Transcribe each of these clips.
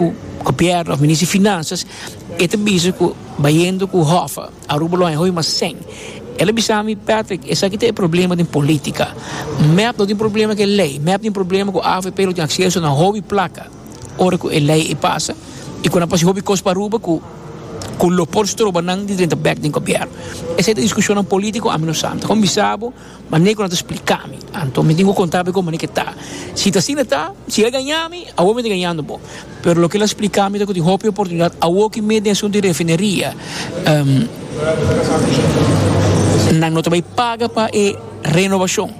Ku Gobierno of Minister di Finanzas e ta bisa ku bayendo ku Hoffa Aruba lo haña hopi mas sèn. El a bisa mi, Patrick, esaki ta e problema den politica. Mep no tin problema ku e lei. Mep tin problema ku avp lo tin acceso na hopi placa ora ku e lei a pasa i ku nan por hasi hopi cos pa Aruba ku ku lo por stroba nan di drenta bek den Gobierno. Esei ta discusionnan politico, ami no sa. Mi ta kon bisa bo. Ma Nico no ta splica mi, anto mi tin cu conta bo como ke ta. Si ta asina ta, si el a gaña mi, awo mi ta gañando bo. Pero loke el a splica mi ta cu tin hopi oportunidad awo cu mi den asunto di refineria, nan no ta bay paga pa e renovacion,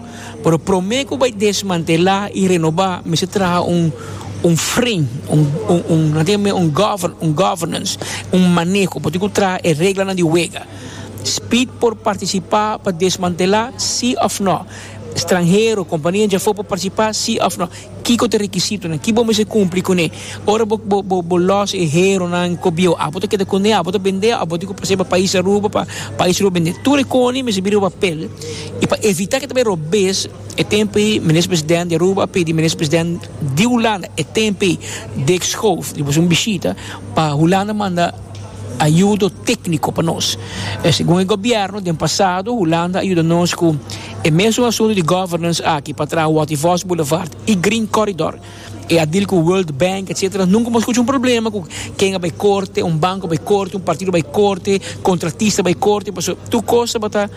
pero prome cu bay desmantela y renoba mester traha un fren, un governance, un maneho, bo tin cu traha e reglanan di wega. Speed por partisipá pa desmantelá, sí òf nò? Stranhero, kompania djafó por partisipá, sí òf nò? Kiko ta e rekisitonan? Ki bo mester kumpli kuné? Ora bo bo bo lòs e heronan ku bieu, abo ta keda kuné? Abo ta bendé? Abo tin ku pas'é pa pais Aruba, pa pais Aruba bendé? Tur e koni mester bira papel. I pa evitá ku ta bai robes, e tempu ei Minister Presidente di Aruba a pidi Minister Presidente di Hulanda, e tempu ei Dick Schoof, di bos un bishita, pa Hulanda manda, a yudo tékniko pa nos. Segun e gobièrnu den pasado Hulanda a yuda nos ku e mesun asuntu di governance aki pa traha Watervos Boulevard i Green Corridor. E a dil ku World Bank etsetera. Nunka bo a skucha un problema ku ken a bai korte, un banko a bai korte, un partido a bai korte, kontratista a bai korte pasobra tur kos tabata.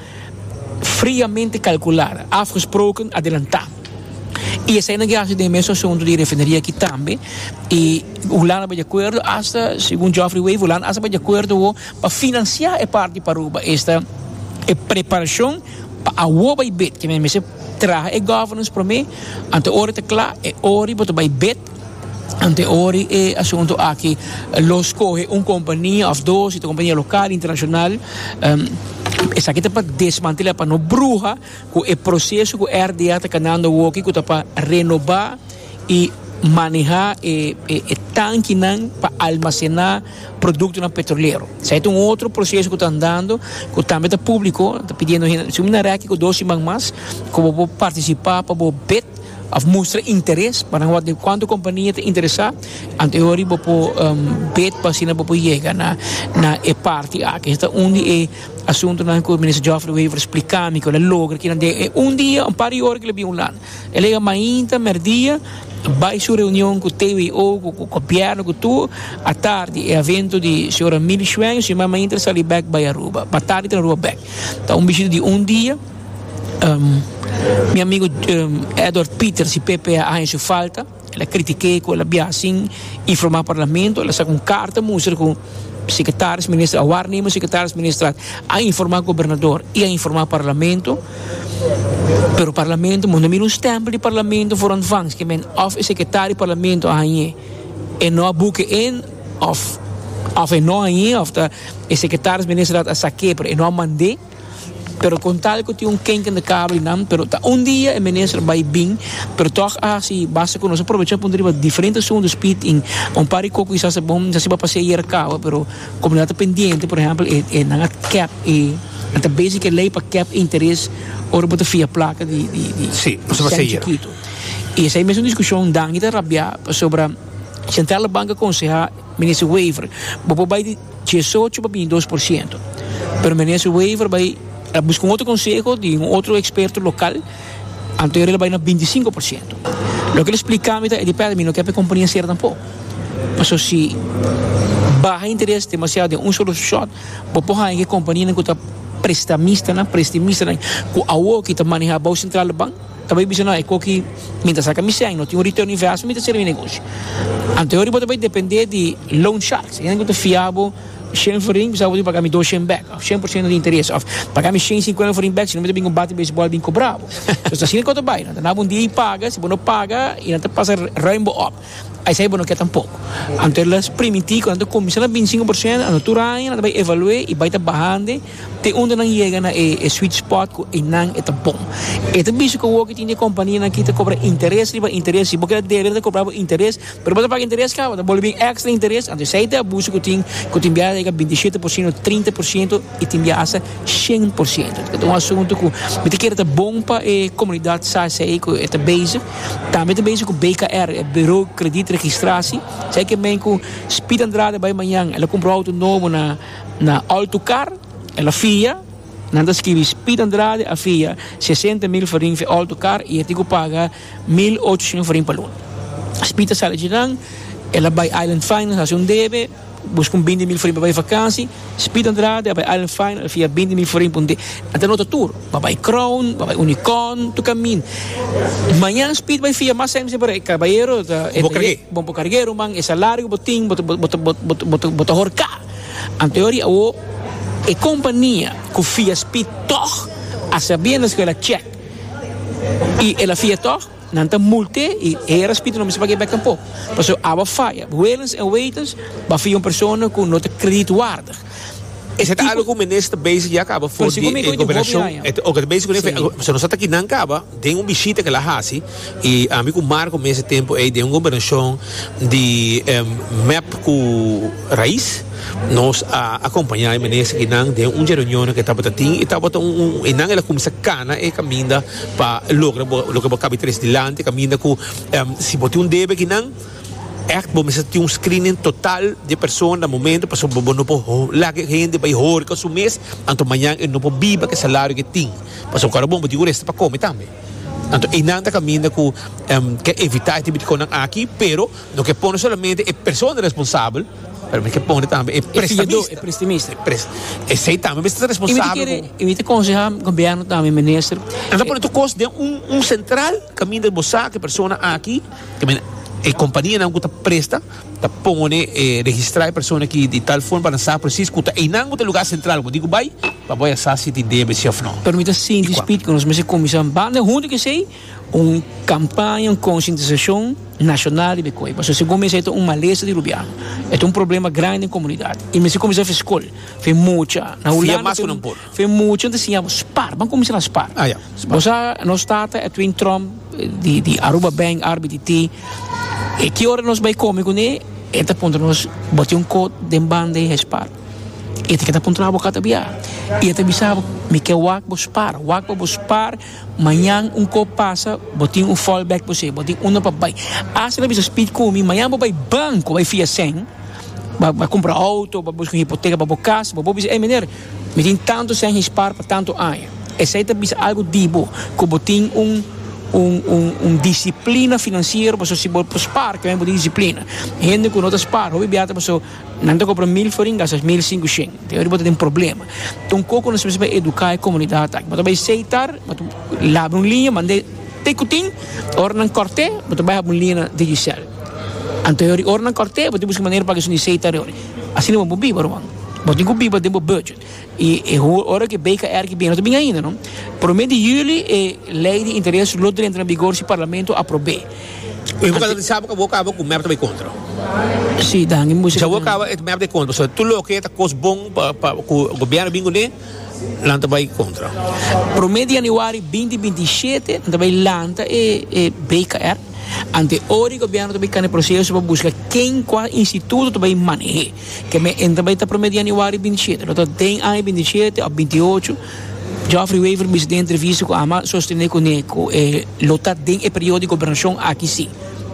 Friamente calcula, afgesproken, adelanta. Y esainan ki haci den e mes asunto di refineria aki tambe. Y Hulanda bay de acuerdo hasta, segun Geoffrey Wave, Hulanda hasta bay de acuerdo awo pa financia e parti pa Aruba. Esta e preparacion pa awo bay bid. Ke men mester traha e governance prome. Anto ora ta cla, e ora bo ta bay bid. Ante ori e asuntu aki lo skohe un kompania òf dos, si ta kompania lokal, internashonal, esaki ta pa desmantelá, pa no bruha ku e proseso ku RDA ta kanando awoki ku ta pa renobá i manehá e e tankinan pa almasená produktonan petrolero. Esaki ta un otro proseso ku ta andando ku tambe ta públiko, ta pidiendo hende, Su mina rèkit ku dos siman mas ku bo por partisipá pa bo bet. Of mustra interes pa nan wak di cuanto compania ta interesa, anto e hori bo por bid pa asina bo por yega na e parti aki. Esaki ta un di e asuntonan cu Minister Geoffrey Wever splica mi cu el a logra aki den e un dia, un par di ora cu el a bin Hulanda. El a yega mainta, merdia, bay su reunion cu TWO, cu gobierno, cu tur. Atardi e evento di señora Millie Schwenk, su herman mainta el a sali bek bay Aruba. Ba tardi el ta na Aruba bek. Ta un bishita di un dia. Mi amigo Edward Peters y Pepe a haña su falta, el a critic'é cu el a biaha sin informa Parlamento, el a saca un carta mustra cu Secretaris Minister a warning bo Secretaris Minister a informa Gobernador y a informa Parlamento, pero Parlamento moest a mira un stempel di Parlamento for on van ske'e men of e Secretari di Parlamento a haña e no a buke en of e no haña of ta e Secretaris Minister a sak'é pero e no a mand'é. pero con tal cu tin un kenken di cabra y nan, pero ta un dia e minister bay y bin, pero toch a haci basta cu nos a provecha puntra riba diferente asunto speed in un par di coco kisas ta bon esaki ba pasé ayer a caba pero comunidad ta pendiente por ejemplo e e nan a kep e nan ta bezig cu e ley pa kep e interes ora bo ta fia placa di di di sheng chikito y esaki mesmo discusion Danny ta rabia pasobra centralbank a aconseha. Minister Wever, bo por bai di diesocho pa bini dos por siento. Pero Minister Wever bai a busca un otro conseho di un otro experto local, anto e bai na binti sinco por siento. Loke el a explica mi ta e depende mi no ke pa e compania cera tampoco. Paso si baha interes demasiado den un solo shot bo por haya ke companianan ku ta prestamistanan, prestimistanan ku awo aki ta maneha bou centralbank. Ta bai bisa no eco ki mi ta saca mi cen no tin un return invest mi ta cera mi negoshi ante ori bo ta bai depende di loan sharks e nan cu ta fia bo shen forin bisaba bo tin paga mi dos shen back of shen por ciento di interes of paga mi shen cincuenta forin back sino mi ta bini cu un bate baseball bini cobra bo so ta asina cu ta bai nan ta naba un dia y paga si bo no paga y nan ta pasa ruim bo op. Esei bo no ke tampoko. Anto e lus primití ku nan ta kuminsá na bintisingu por sento, anto tur aña nan ta bai evalu'é i bai ta bahande te unda nan yega na e e sweet spot ku einan e ta bon. E ta bisa ku awor ke tin di e kompanianan aki ta kobra interes riba interes. Si bo keda debe nan ta kobra bo interes, pero bo ta paga interes kaba, ta bolbe bin èkstra interes. Anto esei ta e abuso ku tin, ku tin biaha ta yega binti shete por sento, trinta por sento i tin biaha hasta shen por sento. Ta un asuntu ku mi ta kere ta bon pa e komunidat sa esei ku e ta bezig. Tambe ta bezig ku BKR, e Buro Krediet Registrasi. Esei ke mein ku Speed Andrade a bai mañan, el a kumpra un outo nobo na Altucar, el a fia, nan ta skibi Speed Andrade a fia sesenta mil farin for e outo kar i e tin ku paga mil ocho sien farin pa luna. Speed ta sali dje nan, el a bai Island Finance hasi un debe. Busca un binti mil forin pa bai vakansi. Speed Andrade a bai Island Fine, a fia binti mil forin pa un dea. A ta nota tur. Bo bai Crown, bo bai Unicorn, tur kamin. Mañan Speed bai fia mas hemse parai. Kabayero ta, e ta ye, bon por karg'é ruman, e salario ku bo tin, bo ta, bo ta, bo ta, bo ta, bo ta horká. Anto yori awo e kompania ku fia Speed tòg a sabiendas ku el a chèk i el a fia tòg. Nan ta mult'é i e era spiritu no mester paga e bèk tampoco. Pasobra aba faya. Willens en Wetens bafia un persona cu no ta kredietwaardig. Esei ta algo cu menes ta bezig ya caba for di e gobernacion. E ta oca ta bezig cun'é faya. Pasobra nos a taki nan caba den un bishita cu el a haci i ami cu Marco mes e tempu ei den un gobernacion di mep cu rais nos a acompaña e menes aki nan den un dje reunionnan cu e tabata tin i tabata un, e nan el a cuminsa cana e caminda. pa logra bo loke bo cabe tres dilanti caminda cu si bo tin un debe aki nan echt bo mester tin un screening total di e persona na momento pasobra bo no por laga e hende bay horca su mes anto mañan e no por biba cu e salario cu e tin pasobra ora bon bo tin cu resta pa come tambe anto eynan ta caminda cu ke evita e tipo di cosnan aki pero no ke pone solamente e persona responsabel. Pero mi ke pone tambe e prestamista. Esei tambe mester ta responsabel ku. Y mi ta konseha gobierno tambe, minister. Nan ta pone tur kos den un sentral kaminda bo sa ku e persona aki, e kompanianan ku ta presta ta pone e registra e persona aki di tal forma pa nan sa presis ku ta einan ku ta e lugar sentral ku bo diko bai pa bo ya sa si tin debe si òf no. Pero mi ta sinti spit ku nos mester kuminsá banda huntu ku esei. Un kampaña, un konsientisashon nashonal riba e koi. Pasobra segun mi e ta un malesa di rubiano. E ta un problema grandi den komunidat. I mester kuminsá afia skol, afia mucha. Na Hulanda afia mucha ta siña bo spar. Ban kuminsá na spar. Bo sa nos tata Edwin Tromp di Aruba Bank, RBTT, e ki ora nos bai komi kuné e ta puntra nos, bo tin un kot den banda di e spar? E ta ke ta puntra bo aká ta biá. I e ta bisa bo mi ke wak bo spar, wak pa bo spar. Mañan un kop pasa bo tin un fall back bo se bo tin unda pa bai asta lo bisa speed ku mi mañan bo bai banko bai fia sèn ba ba kumpra outo ba buska un hipoteka pa bo kas bo bo bisa ey miner mi tin tantu sèn hispaar pa tantu aña esei ta bisa algu di bo ku bo tin un un un un disiplina finansiero pasobra si bo bo spaar tambe bo tin disiplina hende ku no ta spaar hopi biaha ta paso. Nan ta compra mil forin gasta mil sinku shen te ora bo ta den problema ta un coco nos mester educa e comunidad aki bo ta bay seitar bo ta labra un línea mande te cu tin ora nan corte bo ta bay habi un línea digicel anterior ora nan corte bo tin busca manera paga esun di seitar asina bo no biba ruan bo tin cu biba den bo budget. I e hora ku e BKR ku bin no ta bin ainda no. Prome di juli e lei di interes lo drenta na bigor si parlamento aprob'é. Bo tabata di sa bo kaba ku mep ta bai kontra? Si, ta hangi musa. Si bo kaba e mep ta bai kontra pasobra tur loke ta kos bon pa ku gobièrnu bin kuné nan ta bai kontra. Prome di yanüari binti binti i shete nan ta bai lanta e BKR ante ora i gobièrnu ta bai kanda e proseso pa buska ken kua instituto ta bai maneh'é. Ke me entra bai ta prome di Anuari binti shete, lo ta den aña binti shete of binti ocho. Geoffrey Wever bisita den entrevista ku Ama sostene kune ku e lo ta den e periodo di gobernashon aki si,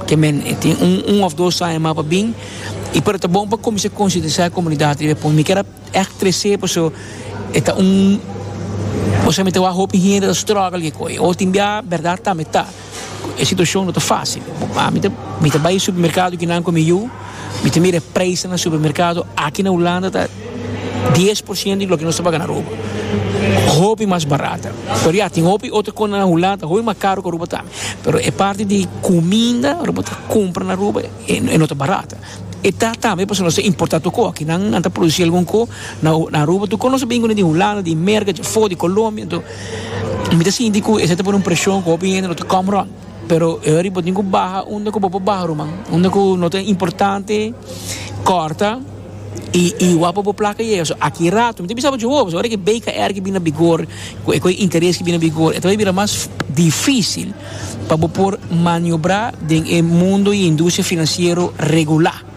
ke men e tin un un of dos aña mas pa bin i pero ta bon pa kuminsá konsientisá e komunidat riba e punto. Mi kier a ègt tres'é paso e ta un kos ku mi ta wak hopi hende ta struggle ke koi. O tin bia bèrdat tambe ta. E situacion no ta facil. Mi ta bay e supermercado ki nan cu mi yu, mi ta mira e prijsnan na supermercado aki na Hulanda ta dies por ciento di loke nos ta paga na Aruba. Hopi mas barato. Pero ya, tin hopi otro cosnan na Hulanda ta hopi mas caro cu Aruba tambe. Pero e parti di cuminda, lo bo ta cumpra na Aruba e no ta barato. E ta tambe pasobra nos ta importa toco aki nan nan ta produci algun co na na Aruba tu con nos a bini cuna di Hulanda di Merca di afo di Colombia enton mi ta sinti cu esey ta pone un presion cu hopi hende lo ta come rond pero hurry bo tin cu baha unda cu bo por baha ruman unda cu no ta importante corta y y wak pa bo placa yega so aki rato mi ta bisa bo dje ho pasobra ora ki BKR ki bini na bigor cu e cu e interes ki bini na bigor e ta bay bira mas dificil. pa bo por maniobrá den e mundo di industria finansiero regulá.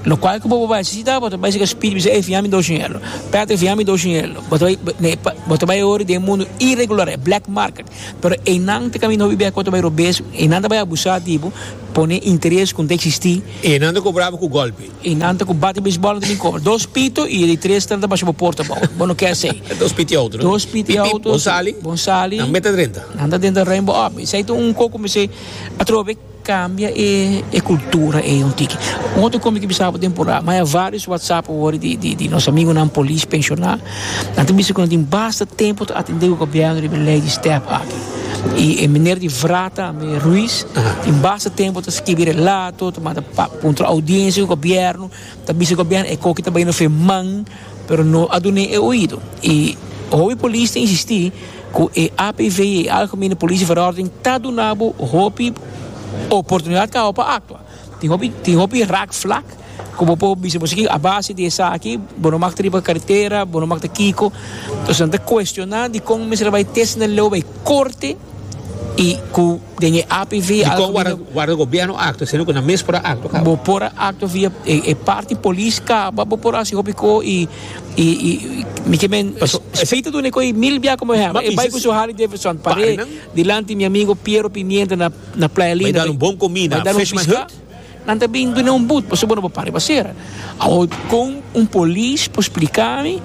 Lokual ku bo por bai sisita, bo ta bai sika Speedy bisa, Ey, fia mi dos shinel. Patrick, fia mi dos shinel. Bo ta bai, bo ta bai ora den e mundo iregular, e black market. Pero einan ta kaminda hopi bek ku bo ta bai robes, einan ta bai abusá di bo, pone interes ku no ta eksistí. Einan ta kobrá bo ku gòlpe. Y nan ta cu bate beisbol ante mi comer. Dos pito y e di tres ta basha bo porta bou. Bo no kier esey. Dos piti auto, no? Dos piti auto. Pip, pip, bon sali. Bon sali. Nan meta drenta. Nan ta drenta Rainbow Up. Esey ta un coco mesey atrobe cambia e e cultura ey un tiki. Un otro combi ki bisaba temporada. Maya varios WhatsApp awor di di di nos amigonan polis pensiona. Nan ta bisa ku nan tin basta tempu ta atendé ku gobièrnu riba e lei di step aki. I e miner di Vrata me Ruiz tin basta tempu ta skibi relato, ta manda puntra oudiensia ku gobièrnu, ta bisa gobièrnu e koki ta bai no feman, pero no a dun'é e oido. I hopi polis ta insistí ku e APV i e Algemene Polisie Verordening ta duna bo hopi oportunidat kawa pa aktua. Tin hopi tin hopi rak flak ku bo por bisa bo sigi a base di esaki bo no makt riba karetera bo no makt kiko entonces nan ta kuestioná dikon mester a bai test na leu bai korte i ku den e APV algu Dikon wòrdu mino wòrdu gobièrnu a aktua sino ku nan mes por a aktua kaba? bo por a aktua via e e parti polis kaba bo por a hasi hopi ko i i i mi ke men Paso e Speed ta duna e ko i mil biaha komo hèr Ma e bai bisa ku si su Harley Davidson par'é pare nan dilanti mi amigo Piero Pimienta na Na Playa Linda. Bai dal un bon komi na Fishman Hut. Nan ta bin duna un but pasobra bo no para riba sera. Awor kon un polis por splika mi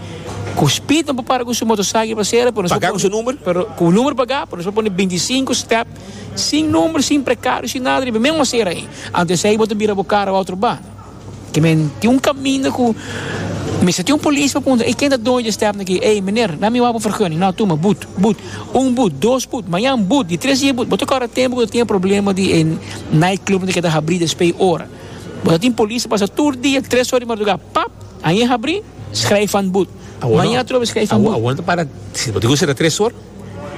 ku spid nan por para ku su moto saki riba sera pero nos por pone. Paga ku su number? Pero ku un number paga pero nos por pone bintisinko step sin number sin prekado sin nada riba e mesmo sera ei. Anto esei bo ta bira bo karo otro ba. Tin men tin un caminda cu mester tin un polis pa puntra, y ken ta doño di e stepnan aki? Ey, meneer, na mi wak bo vergunning. No, tuma, boet, boet. Un boet, dos boet, mañan boet, di tres dia boet. Bo ta corre tempo cu ta tin e problema di e nightclubnan cu ta habri despe e ora. Bo ta tin polis ta pasa tur dia, tres ora di madruga, pap! Aña e habri, schrijf van boet. Mañan atrobe, schrijf van boet. Awor no ta para, si bo ta gun cerra tres ora?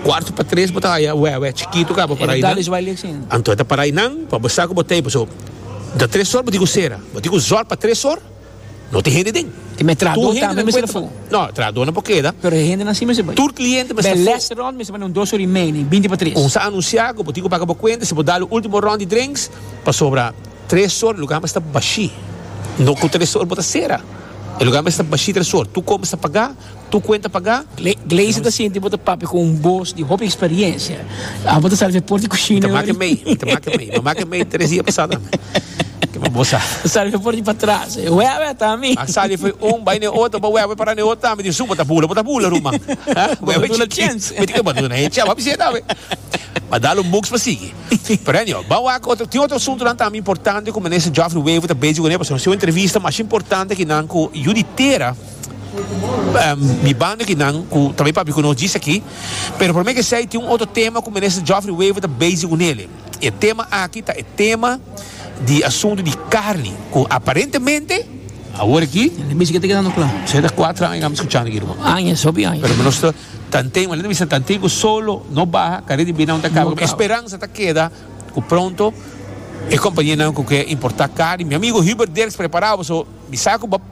Cuarto pa tres bo ta haya wewe chikito ka pa para ayi nan. Anto e ta para ayi nan pa bo sa ku bo tey paso ta tres or bo tin ku sera. Bo tin ku zor pa tres or no tin hende den. Tur hende nan kuenta pa no trahador nan por keda. Tur kliente mester fu. Un sa anunsia ku bo tin ku paga bo kuenta si bo da lo ultimo rond di drinks pasobra tres or e lugar mester ta bashi. No ku tres or bo ta sera e lugar mester ta bashi tres or tur kos mester paga. Tu cuenta paga? Glazer ta sinti bo ta papia cu un bos di hopi experiencia. Abo ta sali fe por di cushina. Ta make mei, ta make mei. Ta make mei tres dia pasado mi. Ke bo bo sa. Ta sali fe por di patras. Wewe ta mi. A sali fe un, bai ne otro, bo wewe para ne otro tambe. Di su bo ta bula, bo ta bula ruman. Bo ta duna chance. Bo ta duna he chance. Bo ta bisa tambe. Bo ta dalo un buks pa sigui. Pero anyhow, bo wak otro, tin otro asunto nan tambe importante cu Minister Geoffrey Wever ta bezig cu ne. Pasobra si un entrevista mas importante ki nan cu yu di tera. di banda kinan ku ta bay papia ku nos djis aki pero prome kesey tin un otro tema ku Minister Geoffrey Wever ta bezi ku nele y e tema aki ta e tema di asuntu di carni ku aparentemente awor aki sey ta cuatro aña mi ta scuchando aki riba pero mi no sta tanten mi ta bisa tanten ku solo no baha carrera di binan ta caba esperanza ta keda ku pronto e companianan ku ke importa carni mi amigo Hubert Dirks prepara bo so mi sa ku bo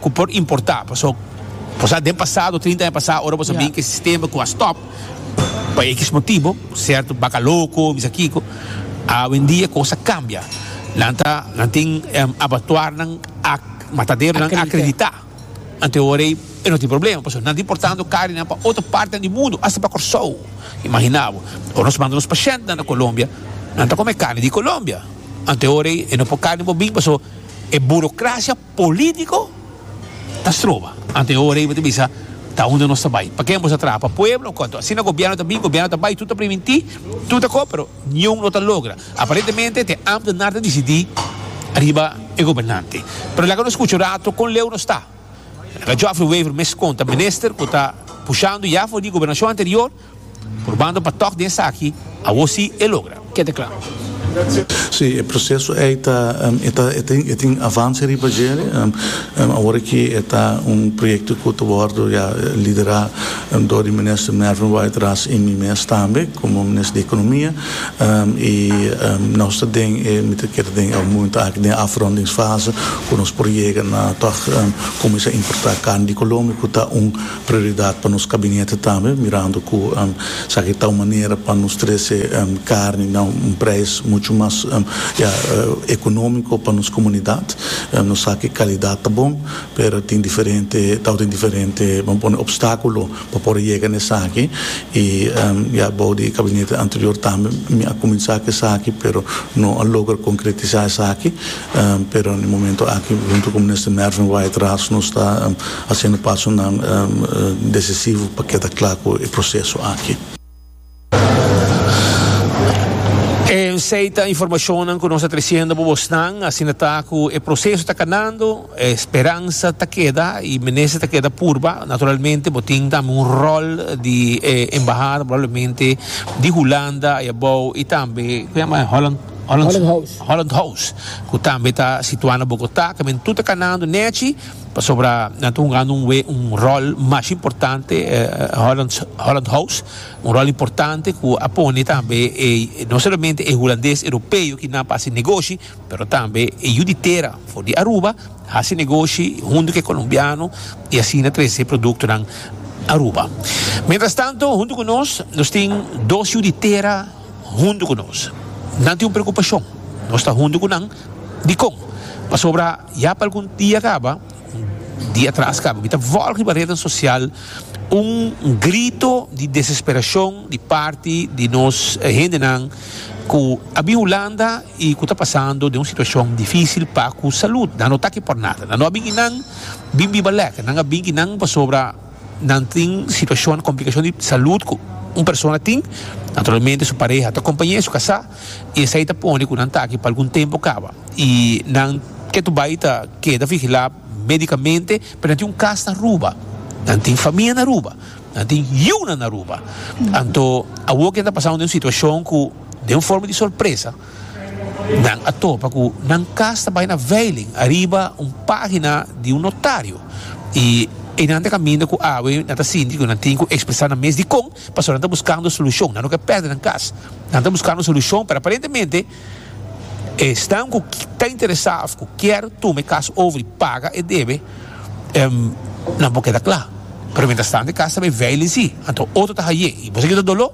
ku por importá paso por sa den pasado trinta aña pasá ora boso bin ku e sistema ku a stòp pa ekis motibu sierto baka loko o misa kiko awendia e kos a kambia nan ta nan tin abatuarnan mataderonan akreditá anto ora ei e no tin problema paso nan ta importando karinan pa otro partenan di mundu asta pa Kòrsou imaginá bo ora nos manda nos pashèntnan na Colombia nan ta kome karni di Colombia anto ora ei e no por karni bo bin paso e burokrasia. Politico ta stroba. Ante e ora ey bo ta bisa ta unda nos ta bay. Paken bo sa traha pa pueblo cu anto. Asina gobierno ta bin, gobierno ta bay, tu ta priminti, tu ta co, pero niun lo ta logra. Aparentemente te ambtenaar ta dicidi ariba e gobernante. Pero laga nos scucha un rato con leu nos ta. Laga Geoffrey Wever mes conta minister cu ta pushando ya for di gobernacion anterior. Purbando pa tòg di esaki, awor sí e logra. Ke ta kla. Sí, e proseso ei ta e tin avanse riba dje. Awor aki e ta un proyekto ku ta wòrdu ya liderá dor di Minister Mervin Wright Ras i mi mes tambe komo Minister di Ekonomia. I nos ta den e mi ta keda den e houmento aki den e afrondingsfase ku nos por yega na tòg kuminsá importá karni di Colombia ku ta un Prioridad pa nos Kabinete tambe, mirando cu esaki ta un manera pa nos trece carni na un prijs mucho mas economico pa nos comunidad. Nos sa cu e calidad ta bon, pero tin diferente, ta tin diferente, bo pone obstaculo pa por yega na esaki. Y ya abao di e Kabinete anterior tambe mi a cuminsa cu esaki, pero no a logra concretisa esaki. Pero na e momento aki huntu ku Minister Mervin Wyatt-Ras nos ta hasiendo pasonan desisivo pa keda kla ku e proseso aki. Esei ta informashonnan ku nos ta tresiendo pa bosnan. Asina ta ku e proseso ta kanando, e speransa ta keda i mester ta keda purba. Naturalmente bo tin tambe un ròl di e embahada probablemente di Hulanda ai abou i tambe ku a yama Holland. Holland House, ku tambe ta situá na Bogotá, ta men tur ta kanando nèchi, pasobra nan ta hunga nun we un ròl masha importante, Holland House, un ròl importante ku a pone tambe e no solamente e hulandes europeo ki nan pa hasi negoshi, pero tambe e yu di tera for di Aruba hasi negoshi huntu ku e kolombiano i asina trese produktonan Aruba. Mientrastanto, huntu ku nos, nos tin dos yu di tera. huntu ku nos. Nan tin un preokupashon, nos ta huntu ku nan. Dikon? Pasobra ya pa algun dia kaba, un dia atras kaba, mi ta vòl riba retnan sosial un grito di desesperashon di parti di nos hendenan ku a bin Hulanda i ku ta pasando den un situashon difísil pa ku salud. Nan no ta aki por nada. Nan no a bin kinan bin biba lèk. Nan a bin kinan pasobra. Nan tin situashon, komplikashon di salud ku un persona tin. Naturalmente su pareha ta kompañ'é, su kasá, i esei ta pone ku nan taki pa algun tempu kaba. I nan ke tu bai ta keda vigilá médikamente, pero nan tin un kas na Aruba, nan tin famia na Aruba, nan tin yunan na Aruba. Anto, awor ke nan ta pasá un situashon ku den un forma di sorpresa, Nan a topa ku nan kas ta bai na veiling ariba un página di un notario i einan ta kaminda ku awe nan ta sinti ku nan tin ku ekspresá nan mes dikon pasobra nan ta buskando solushon. Nan no ke pèrdè nan kas. Nan ta buskando solushon pero aparentemente esnan ku ta interesá òf ku kier tuma e kas over i paga e debe nan por keda kla pero mientras tanto e kas ta bai veiling si anto otro ta haye i bo sabia ki ta doló.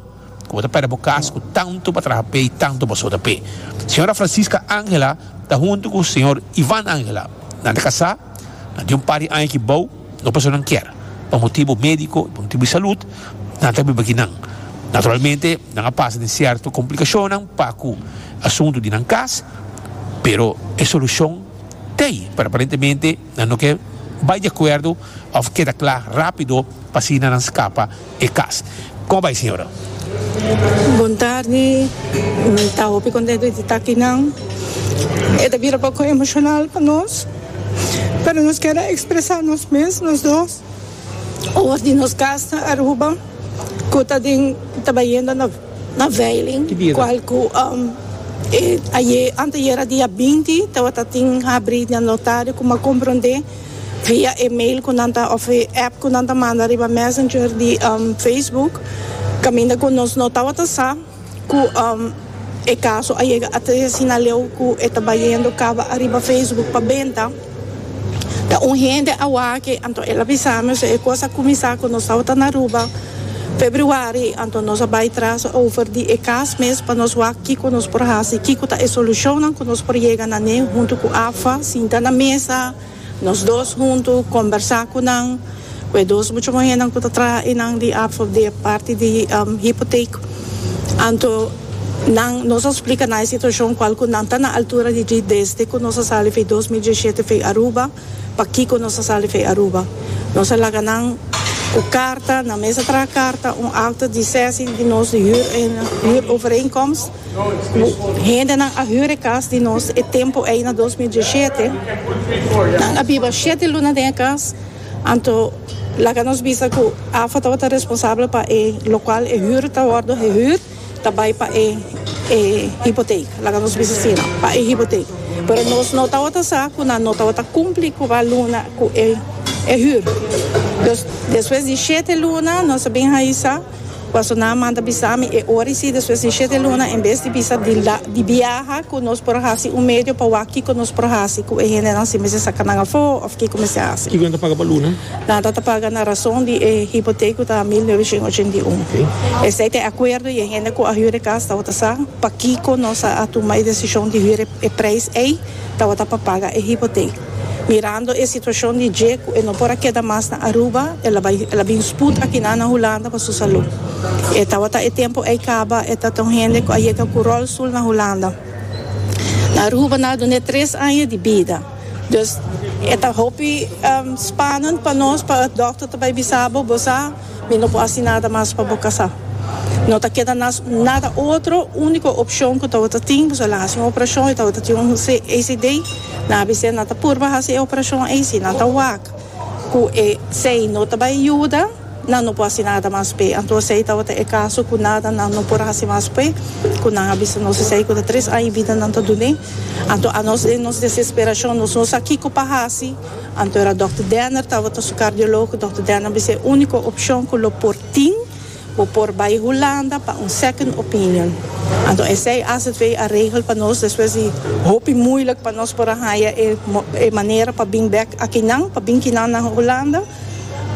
Bo ta perde bo cas cu tanto bo a traha p'e y tanto bo a suda p'e. Sra. Francisca Angela ta hunto cu Sr. Ivan Angela. Nan ta casá, nan tin un par di aña ki bao, dos personanan kier. Pa motibo medico y pa motibo di salud, nan ta biba aki nan. Naturalmente, nan a pasa den cierto complicacionnan pa cu asunto di nan cas, pero e solucion t'ey, pero aparentemente, Nan no ke bai di akuerdo òf keda kla rápido pa asina nan skapa e kas. Kòmo bai señora? Bontardi. Mi ta hopi kontentu di ta akinan. E ta bira poko emoshonal pa nos, pero nos keda ekspresá nos mes nos dos. Oor di nos kas na Aruba ku ta den ta bayendo na na veiling kual ku e aye anteayer a dia binti tabata tin habri na notario ku m'a komprondé via e mail ku nan ta òf e app ku nan ta manda riba messenger di Facebook kaminda ku nos no tabata sa. Cu e caso a yega a trece na leu cu e ta bayendo caba ariba Facebook pa benta. Ta un hende awaki anto el a bisa mi so e cos a cuminsa cu nos tabata na Aruba Februari anto nos a bay tras over di e cas mes pa nos wak kico nos por haci, kico ta e solucionnan cu nos por yega na ne hunto cu AFA sinta na mesa. Nos dos huntu kombersá ku nan, ku e dos mucha muhénan ku ta traha einan di AFOP di e parti di hipotek. Anto nan, nos a splika nan e situashon kual ku nan ta na altura di djis desde ku nos a sali fei dos mil diesshete fei Aruba, pakiko nos a sali fei Aruba. Nos a laga nan ku karta, nan mes a traha karta, un akta di sèsing di nos di hür overeenkomst. Cu hendenan a hunre cas di nos e tempo ey na dos mil dieshiete, nan a biba shete luna den e cas, anto laga nos bisa cu AFA tabata responsabel pa e locual e huur ta wordo hehuur ta bay pa e e hypotheek, laga nos bisa así nan, pa e hypotheek. Pero nos no tabata sa cu nan no tabata cumpli cu ba luna cu e e huur. Dus despues di shete luna nos a bin haisa. Paso nan a manda bisa mi e ora i si despues di shete luna en bes di bisa di la di biaha ku nos por hasi un medio pa wak kiko nos por hasi ku e hendenan si mester saka nan afo òf kiko mester hasi. Kiko nan ta paga pa luna? Nan ta ta paga na rason di e hipotek ku ta mil noveciento ochenta i un. Esei ta e akuerdo i e hende ku a hür e kas tabata sa pa kiko nos a tuma e desishon di hür e preis ei tabata pa paga e hipotek. Mirando e situacion di dje cu e no por a keda mas na Aruba, el a bai, el a bin spoed akina na Hulanda pa su salu. E tawata e tempo ei caba, e ta ta un hende cu a yega cu rolstoel na Hulanda. Na Aruba nan a duna e tres aña di bida. Dus, e ta hopi spanend pa nos, pa doctor ta bai bisa bo, bo sa, Mi no por haci nada mas pa bo casa. No ta keda nas nada otro, unico opcion cu tabata tin boso a la haci un operacion y tabata tin un CACD. Nan a bisa nan ta purba haci e operacion ey. Si nan ta wak cu esey no ta bay yuda, nan no por haci nada mas p'e. Anto esey tabata e caso cu nada nan no por haci mas p'e, cu nan a bisa nos esey cu ta tres aña y bida nan ta dun'e. Anto anos den nos desesperacion nos no sa kico pa haci. Anto era Dòkter Denner tabata su kardiológo. Dòkter Denner a bisa e úniko opshon ku lo por tin, bo por bai Hulanda pa un second opinion. Anto esei aswv a regel pa nos despues di hopi muilik pa nos por a haña e manera pa bin bèk akinan, pa bin kinan na Hulanda.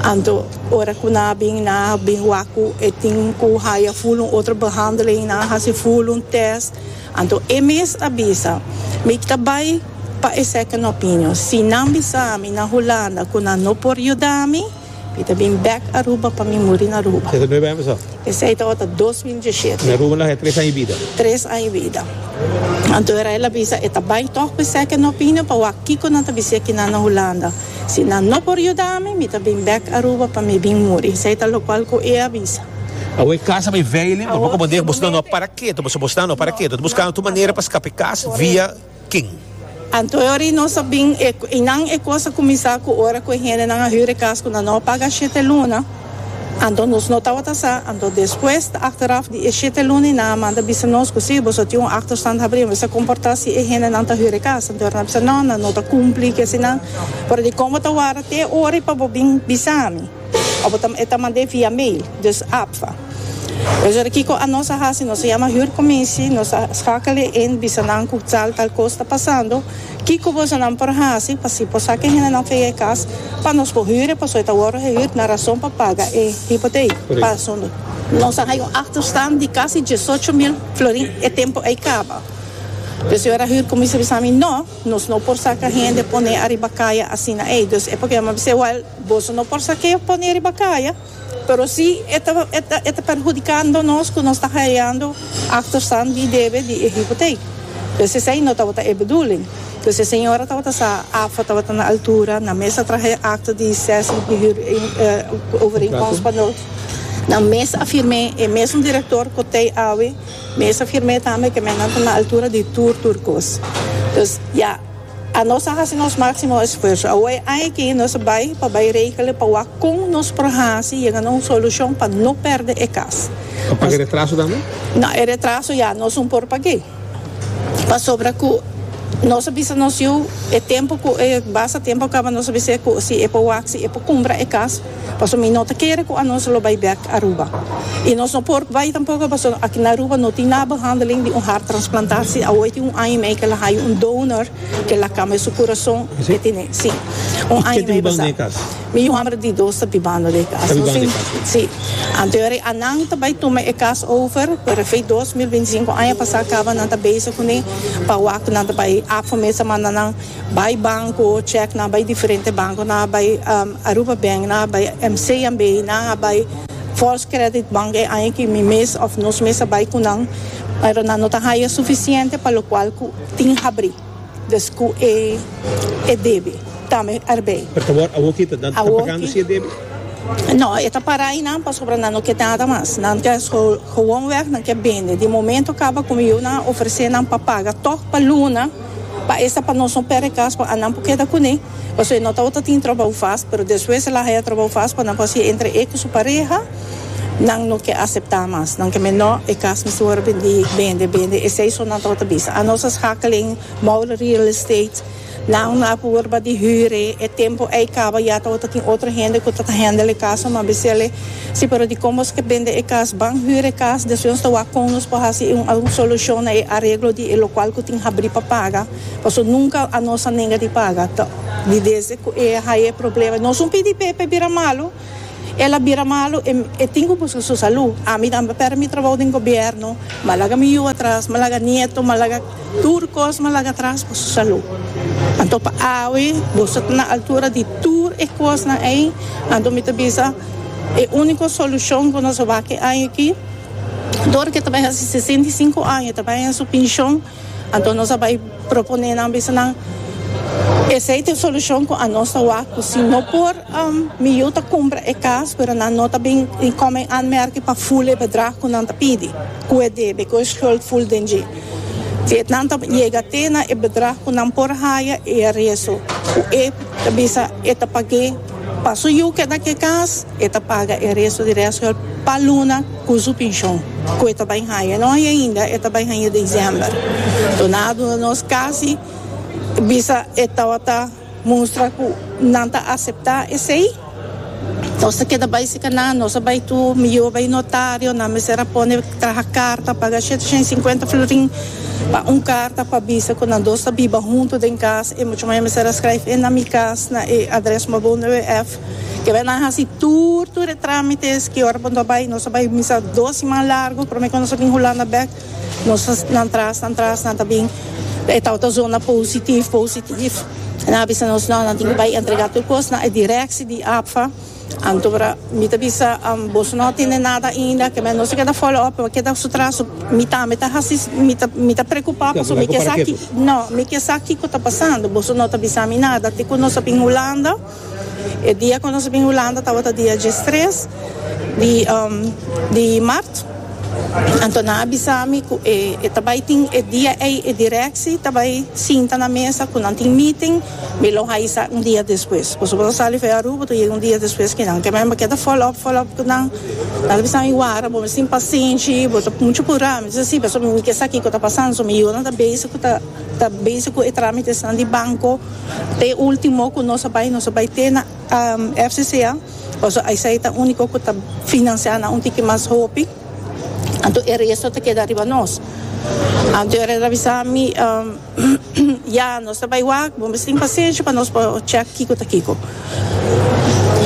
Anto ora ku nan a bin, nan a bin wak ku e tin ku haña ful un otro behandeling, nan a hasi ful un tèst. Anto e mes a bisa, Mi ta bai pa e second opinion. Si nan bisa mi na Hulanda cu nan no por yuda mi, mi ta bin back Aruba pa mi muri na Aruba. Esei ta nueve aña paso? Esei ta ota dos mil diecisiete. Na Aruba lo haja tres aña y bida. Tres aña y bida. Anto Rael a bisa e ta bai tog pa e second opinion pa wak kico nan ta bis'é kinan na Hulanda. Si nan no por yuda mi, mi ta bin back Aruba pa mi bin muri. Esei ta locual cu e a bisa. Awe e kasa bai veiling, bo no por dega boso na no para ketu, pasobra boso na no para ketu. Ta buska anto manera pa skapa e kas, via kin? Anto e ora i nos a bin e, i nan e kos a kuminsá ku ora ku e hendenan a hür e kas ku nan no a paga shete luna, anto nos no tabata sa. Anto despues ta achteraf di e shete luna i nan a manda bisa nos ku si, boso a tin un achterstand habri, mester a komportá si e hendenan ta hür e kas. Anto e ora nan a bisa, no, nan no ta kumpli, ke asinan. Pero di kon bo ta warda te e ora i pa bo bin bisa mi? Of e ta mand'é via mail, dus APVA. Orador kiko anos a hasi, nos a yama huurkomisie, nos a schakel'é in, bisa nan ku tal tal kos ta pasando, kiko bosonan por hasi pa si por sa ke hendenan fei e kas pa nos por huur'é pasobra e ta wòrdu gehuurd na rason pa paga e hipotei. Pasobra. Nos a hai un achterstand di kasi diesocho mil florin e tempo ei kaba. Dus e ora huurkomisie a bisa mi, No, nos no por saka hende pon'é ariba kaya asina ei. Dus e por keda mi a bisa, Wèl, Boso no por sa ke yo pone riba kaya, pero si e ta e ta perhudikando nos ku nos ta haiando aktorsan di debe di e hipotek. Pues esei no tabata e beduling. Pues e señora tabata sa AFA tabata na altura, nan mes a traha e akto di sesi di hür overeenkomst pa nos, nan mes a firm'é, e mesun direktor ku tei awe mes a firm'é tambe ke men nan ta na altura di tur tur kos. Pues ya. Anos a hasi nos máximo esfuerso. Awor e aña aki nos a bai pa bai regele pa wak kon nos por hasi yega na un solushon pa no pèrdè e kas. Pa pag'e retraso tambe? Nau, e retraso ya nos un por pag'e. Pasobra ku nos a bisa nos yu e tempu ku e basta tempu a kaba nos a bis'é ku si e por wak, si e por kumpra e kas. Paso mi no ta kere cu anos lo bay bek Aruba. Y nos no por bay tampoco paso aki na Aruba no tin nada behandeling di un hart transplantatie. Awoy tin un aña y mei cu el a haya un donor cu el a cambia su curazon. E tene, si. Un aña y mei basa. Mi homber di dos ta bibando den e cas. Nos tin, si. Anto e anan ta bay tuma e cas over por efect dos mil binti sinco. Aña pasa caba nan ta bezig cune pa wak cu nan ta bay afo mester manda nan. Bai banco check nan bai diferente banco nan a bai Aruba bank nan a bai MCMB nan a bai false credit bank e aña ki mi mes of nos mes a bai cu nan pero nan no ta haya suficiente pa lo cual cu tin habri dus cu e e debe tambe arbei. Pero ta wor awo kita nan ta pagando si e debe? No e ta para aynan pasobra nan no ke nada mas nan ta gewon weg nan ke bende di momento caba como yo nan a ofrece nan pa paga tog pa luna. Pa esta pa nos no perde cas pa anan por keda cune, pasobra e no tabata tin trabou fas, pero despues el a haya trabou fas pa nan por haci entre e cu su pareha, nan no ke acepta mas, nan ke men no, e cas mester worde bendi, bende, bende, esey so nan tabata bisa. A nos a schakelen, Moule Real Estate, nan a por worde bati hure, e tempo ey caba ya tabata tin otro hende cu ta ta handle e casonan, ma a bisele, Si pero dikon boso ke bende e kas? Ban hür e kas, despues nos ta wak kon nos por hasi un algun solushon na e areglo di e lokual ku tin habrí pa paga, paso nunka anos a nenga di paga. Ta di desde ku e haña e problema. Nos un PDP pa e bira malu, el a bira malu, e e tin ku buska su salú. Ami tambe a pèrdè mi trabou den gobièrnu, m'a laga mi yu atras, m'a laga nieto, m'a laga. Tur kos m'a laga atras pa su salú. Anto pa awe boso ta na altura di tur e kosnan ei, anto mi ta bisa e úniko solushon ku nos a wak e aña aki, tur ke ta bai hasi sesenta i sinku aña ta bai na su pinshon, anto nos a bai proponé nan bisa nan esei ta e solushon ku anos ta wak ku si no por mi yu ta kumpra e kas pero nan no ta bin kòm en anmèrking pa ful e bedrag ku nan ta pidi, ku e debe, ku e skuld ful den dje. Vietnam ta yega te na e bedrag cu nan por haya e aresto cu e ta bisa e ta pag'é. Pa su yu keda na e cas, e ta paga e aresto di reasgeld pa luna cu su pincion, cu e ta bay haya. E no haya ainda, e ta bay haya diciember. Duna a duna nos casi bisa e tawata. Mustra cu nan ta acepta esey. Nos ta keda bay si canan, nos a bay tu, mi yibo bay notario, nan mester a pone traha carta, paga shete shen y cincuenta florin pa un carta pa bisa cu nan dos ta biba hunto den cas, e mucha maya mester a scryf e na mi cas na e adres Mabou WF. Kibay nan a haci tur tur e tramites, ki ora bo no a bay, nos a bay misa dos siman largo prome cu nos a bin Hulanda bek. Nos nan tras nan tras nan ta bin e tawata zona positif positif e nan a bisa nos no nan tin ki bai entrega tur kos na e direkshi di APFA anto wra mi ta bisa boso no tene nada ainda kieme nos a keda follow up a keda su tras so mi tambe ta hasi mi ta preocupa pasobra mi ke sa no mi ke sa kiko ta pasando boso no ta bisa mi nada te ku nos a bin Hulanda. E dia cu nos a bin Hulanda tawata dia diestres di mart. Anto nan a bisa mi cu e ta bay tin e dia ey e directie ta bay sinta na mesa cu nan tin meeting. Mi lo haai sa un dia despues. Pasobra bo ta sali for Aruba bo ta yega un dia despues cu nan. Kema mi keda follow up follow up cu nan. Nan a bisa mi wara bo misti impaciente bo ta mucho pura. Mi dice si pasobra mi ke sa kico ta pasando. So mi yiunan ta bezig cu ta ta bezig cu e tramites nan di banco. Ta e ultimo cu nos a bay, nos a bay te na FCCA, pasobra esey ta unico cu ta financia nan un tiki mas hopi, anto e resto ta keda riba nos. Anto e reda bisa mi, Ya, nos ta bay wak, bo mes tin pacencia pa nos por check kico ta kico.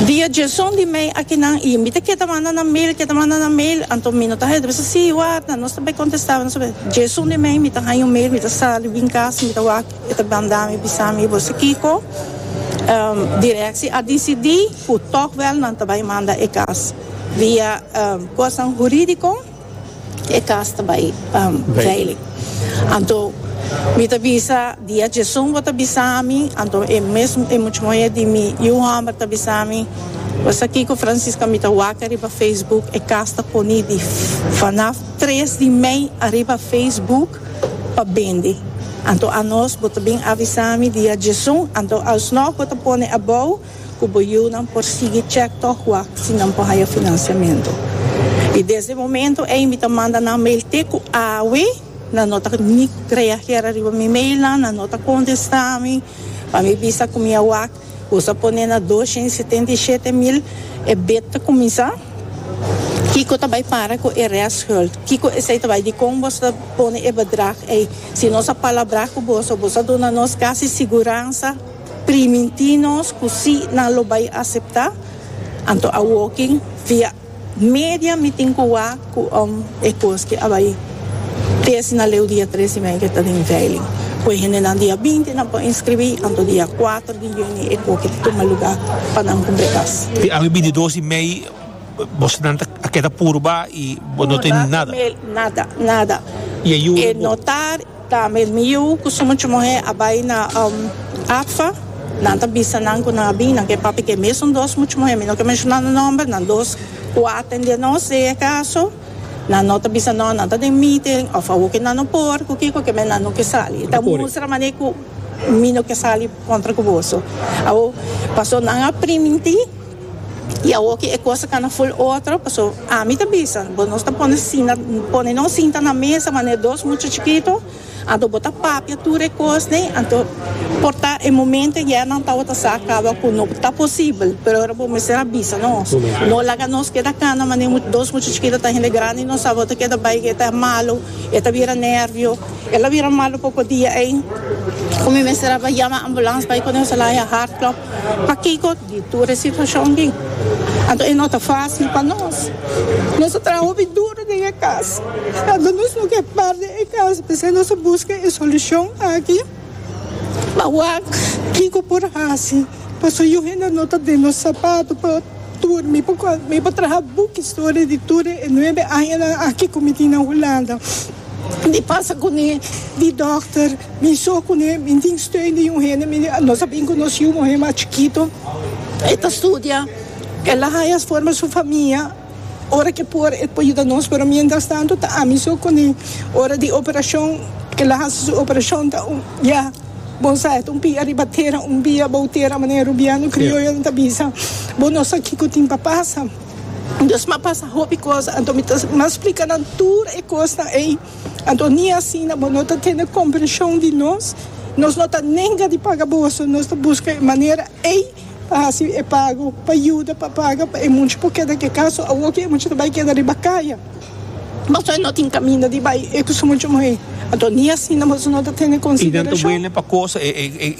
Di e djeson di mey akinan, y mi ta keda manda nan mail, keda manda nan mail, anto mi no ta haya, ta bisa si, warda, nos ta bay contesta, nos ta bay, djeson di mey mi ta haya un mail, mi ta sali bin casa, mi ta wak. E ta banda mi bisa mi, Bo sa kiko? Direkshi a disidí ku tòg wèl nan ta bai manda e kas. Via kosnan hurídiko e kas ta bai veilig. Anto mi ta bisa dia djesun bo ta bisa mi, anto e mesun e mucha muhé di mi yu hòmber ta bisa mi, Bo sa kiko Francisca, mi ta wak ariba Facebook e kas ta poní di fanaf tres di mei ariba Facebook. pa bendi. Anto anos bo ta bin avisa mi di a djesun, anto alsnog bo ta pone abou cu bo yiunan por sigui chek tok wak si nan por haya financiamento. Y desde momento ey mi ta manda nan mail te cu awe nan no ta ni reager ariba mi mailnan, nan no ta contesta mi pa mi bisa cu mi a wak. Bo sa pone na dosha i setenta i shete mil e bid ta kuminsá? Kiko ta bai para ku e rèstgeld? Kiko esei ta bai? Dikon bo ta pone e bedrag ei? Si nos a palabrá ku boso, boso a duna nos kasi siguransa primintí nos ku sí nan lo bai aseptá, anto a woking via. Media mi tin ku wak ku om e kos ke a bai tesi na leu dia tres di mei ke ta den veiling. Ku e hendenan dia binti nan por inskribí, anto dia kuater di yuni e koke ta tuma lugá pa nan kumbre kas. Di awe binti dos di mei bosnan ta a keda puru ba i bo no tin nada. Puru, nada, nada, nada. E notar. Ta mesmi yu cu su mucha muher a bay na ACFA. Nan ta bisa nan cu nan a bini na ke papia ke mesun dos mucha muher, mi no ke menciona nan nomber, nan dos cu a atende nos den e caso, nan no ta bisa nos, nan ta den meeting of awo ke nan no por, cu kico ke men nan no ke sali. E ta mustra mane cu mi no ke sali contra cu boso. Awo, paso nan a priminti. Y awor ki e cosa cana full otro, paso ami ta bisa, bo nos ta pone sinta, pone nos sinta na mesa manera dos mucha chikito, anto bo ta papia tur e cosnan, anto por ta e momento ya nan tawata sa caba cu no ta posibel, pero ora bo mester a bisa nos, no laga nos keda cana manera dos mucha chikito ta hende grandi, no sa bo ta keda bay e ta malo, e ta bira nervio, el a bira malo poco dia ey cu mi mester a bay yama ambulance bay cu nos a laga heart klop. Pakico di tur e situacion aki? Anto e no ta facil pa nos? Nos a traha hopi duro den e cas, anto nos no ke perde e cas, p'esei nos a busca e solucion aki. Awor, kico por haci? Pasobra yu hende no ta den nos sapato pa. Tur, mi por mi por traha buk historia di tur e nuebe añanan aki ku mi tin na Hulanda. Di pasa kuné, di dòkter, mi so kuné, mi tin steun di un hende. Mi nos a bin konosí un muhé mas chikito, e ta studia, el a haña forma su famia, ora ke por e por yuda nos, pero miéntras tantu ta ami so kuné. Ora di operashon, kel a hasi su operashon ta un, ya. Bo sa et un pia riba tera un bia bou tera manera rubiano crioyonan ta bisa bo no sa kico tin pa pasa Dios m'a pasa hopi cos anto mi ta m'a splica nan tur e cosnan ey anto ni asina bo no ta tene comprension di nos nos no ta nenga di paga boso nos ta busca e manera Ey pa hasi e pago pa yuda pa paga pa e mucha por keda ke kaso. Awo ke e mucha ta bai keda riba kaya, boso no tin kaminda di bai e ku su mucha muhé. Anto ni asina boso no ta tene konsiderashon.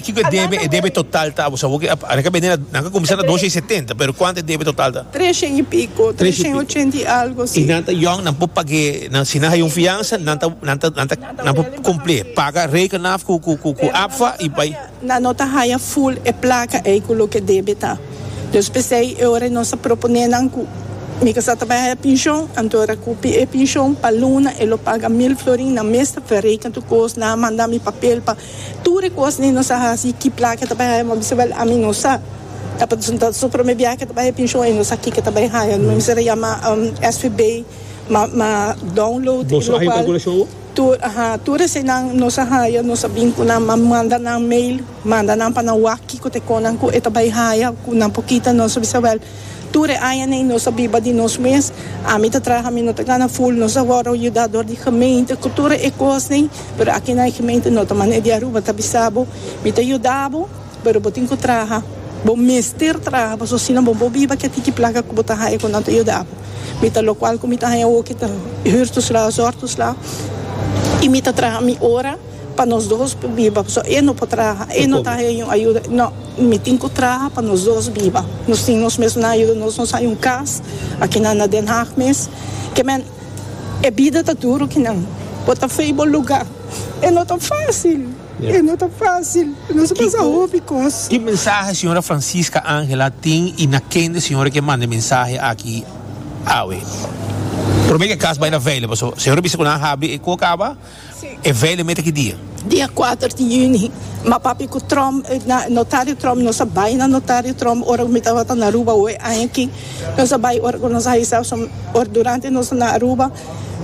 Kiko e debe? E debe total ta boso awo ke a reka bende nan ka kuminsá na dosha i setenta, pero kuantu e debe total ta? Tresha i piko, tresha i ochenta i algo, si. I nan ta yòn, nan por pag'é, nan si nan haya un fiansa nan ta nan ta nan ta nan por kumplié. Paga Rekenaf ku ku ku ku APFA i bai. Nan no ta haya full e placa ey cu loke debe ta. Los p'esey e ora nos a propone nan cu mi ca sa ta bay haya pincion, anto racupi e pincion pa luna e lo paga mil florin nan mes ta verreken tur cos, nan a manda mi papel pa tur e cos ey nos a haci ki placa ta bay haya mi a bisa wel ami no sa, ta pa ta su prome biaha cu ta bay haya pincion ey no sa kico ta bay haya, mi a bisa yama svb ma ma download y locual. Tur, aha, tur eseinan nos a haya, nos a bin cu nan, a manda nan mail, manda nan pa nan wak kico ta e conan cu e ta bay haya, cu nan por kita nos, a bisa wel, tur e aña ney nos a biba di nos mes, ami ta traha, mi no ta gana full, nos a worde yuda door di gemeente cu tur e cos ney, pero aki na e gemeente no ta manera di Aruba, ta bisa bo, mi ta yuda bo. Pero bo tin cu traha. Bo mester traha pasobra asina bo bo biba kia tiki placa cu bo ta haya cu nan ta yuda bo. Mi ta locual cu mi ta haya awo ki ta huur tus la azor tus la y mi ta traha mi ora pa nos dos por biba pasobra e no por traha e no ta haya ningún ayuda. No, mi tin cu traha pa nos dos biba. Nos tin nos mesna ayuda nos. Nos hay un cas aki na na Den Haag mes. Ke men e bida ta duro ki nan. Bo ta fey bo lugar. E no ta fácil. E no ta fácil, nos a pasa hopi kos. Ki mensahe señora Francisca Ángela tin i na kende señora ke manda e mensahe aki awe? Promé ke kas bai na vèile, paso señora bisa ku nan a habri e ku kaba e vèile mete ki dia? Dia kuater di yüni. Ma papia ku Trump, na notario Trump, nos a bai na notario Trump ora ku mi tabata na Aruba oe aña aki. Nos a bai ora ku nos a hisa, paso ora durante nos ta na Aruba.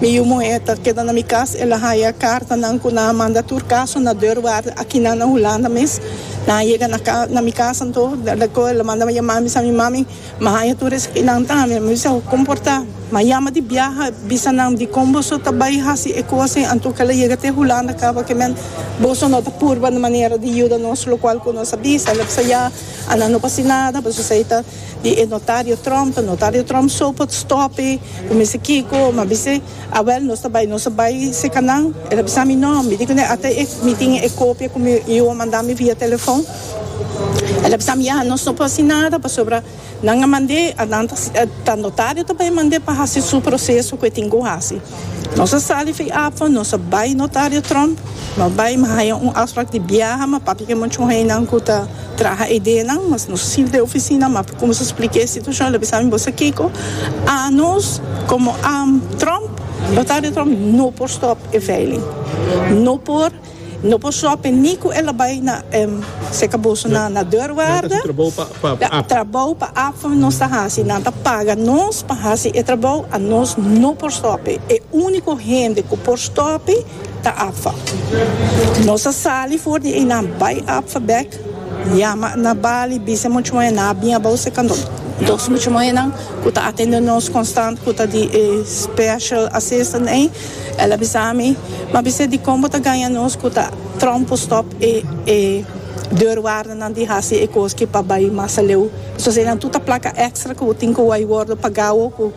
Mi yu muhé ta keda na mi kas, el a haya kartanan ku nan a manda tur kaso na deurwaarde akinan na Hulanda mes. Nan a yega na ka, na mi kas anto, lako el a manda mi yamá, mi bisa mi mami, m'a haya tur esaki nantan, ami a mi bisa ho komportá. M'a yama di biaha, bisa nan di kon boso ta bai hasi e kosnan, anto ku el a yega te Hulanda kaba kemen, boso no ta purba na manera di yuda nos, lokual ku nos a bisa el a bisa ya, Ana no pasi nada, pasobra esei ta. di e notario Trump, notario Trump so por stop e, cu mester kico, mi a bis'e, awel nos ta bay, nos ta bay seca nan, el a bisa mi no, mi di cun'e ata e, mi tin e copia cu mi hijo a manda mi via telefon, el a bisa mi ya, nos no por haci nada pasobra nan a mand'e, a nan ta, ta notario ta bay mand'e pa haci su proceso cu e tin cu haci. Nos a sali fin afo, nos a bai notario Trump, nos bai mi haya un afspraak di biaha, mi a papia cu e muchon heynan cu ta traha edenan, mas nos sirb den e oficina, mi a cuminsa splica e situacion, el a bisa mi, bo sa kico? Anos como Trump, notario Trump no por stop e veiling, no por. No por shopi ni ku el a bai na seka boso na na deurwaarde. Trabou pa app nos ta hasi. Nan ta paga nos pa hasi e trabou a nos no por stopi. E uniko hende ku por stopi ta app. Nos a sali for di einan bai app bek yama na bali bisa muchu moe nan a bin a bou seka nos. Dos muchu moe nan ku ta atende nos konstant ku ta di e special assistant ei. El a bisa mi, M'a bisa dikon bo ta gaña nos ku ta Trump por stòp e e deurwaardernan di hasi e koski pa bai mas aleu. Esun asina nan tur ta plaka èkstra ku bo tin ku wòrdu wòrdu pagá wou ku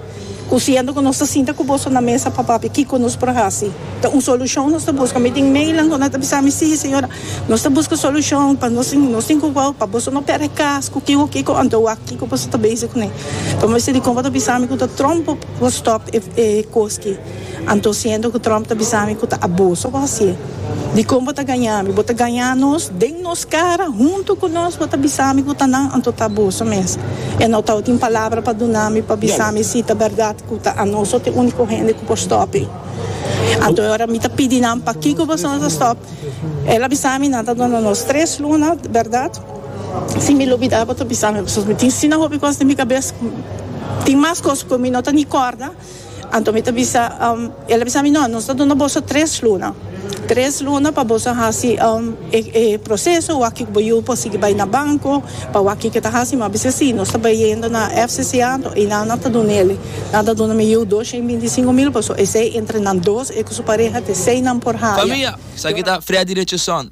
ku siendo ku nos ta sinta ku boso na mesa pa papia kiko nos por hasi. Ta un solushon nos ta buska. Mi tin meilan ku nan ta bisa mi, Sí, señora, nos ta buska solushon pa nos tin nos tin ku wou pa boso no pèrdè kas ku kiko kiko anto wak kiko boso ta bezi kuné. Pero m'a bisa dikon bo ta bisa mi ku ta Trump por. Go stop e cos ki. Anto siento cu Trump ta bisa mi cu ta aboso cu haci. Dicon bo ta gaña mi? Bo ta gaña nos den nos cara, hunto cu nos. Bo ta bisa mi cu ta nan anto ta aboso mes. E no tau tin palabra pa duna mi pa bisa mi si ta berdad cu ta anoso ta e unico hende cu por stop e. Anto e ora mi ta pidi nan pakico boso no ta stop. El a bisa mi nan ta duna nos tres luna berdad. Si mi lo bida bo ta bisa mi pasobra mi tin asina hopi cos den mi cabes tin mas cos cu mi no ta ni corda anto mi ta bisa el ta bisa mi no nos ta duna boso tres luna tres luna pa boso hasi e proceso wak cu bo yu por sigi bay na banco pa wak kico ta hasi mi bisa si nos ta bay yendo na FCCA anto eynan nan ta dunele nan ta duna mi yu dos shen binti y sinco mil pasobra esey entre nan dos y cu su pareha te eseynan por haya. Famia, esaki ta Freddy Richardson,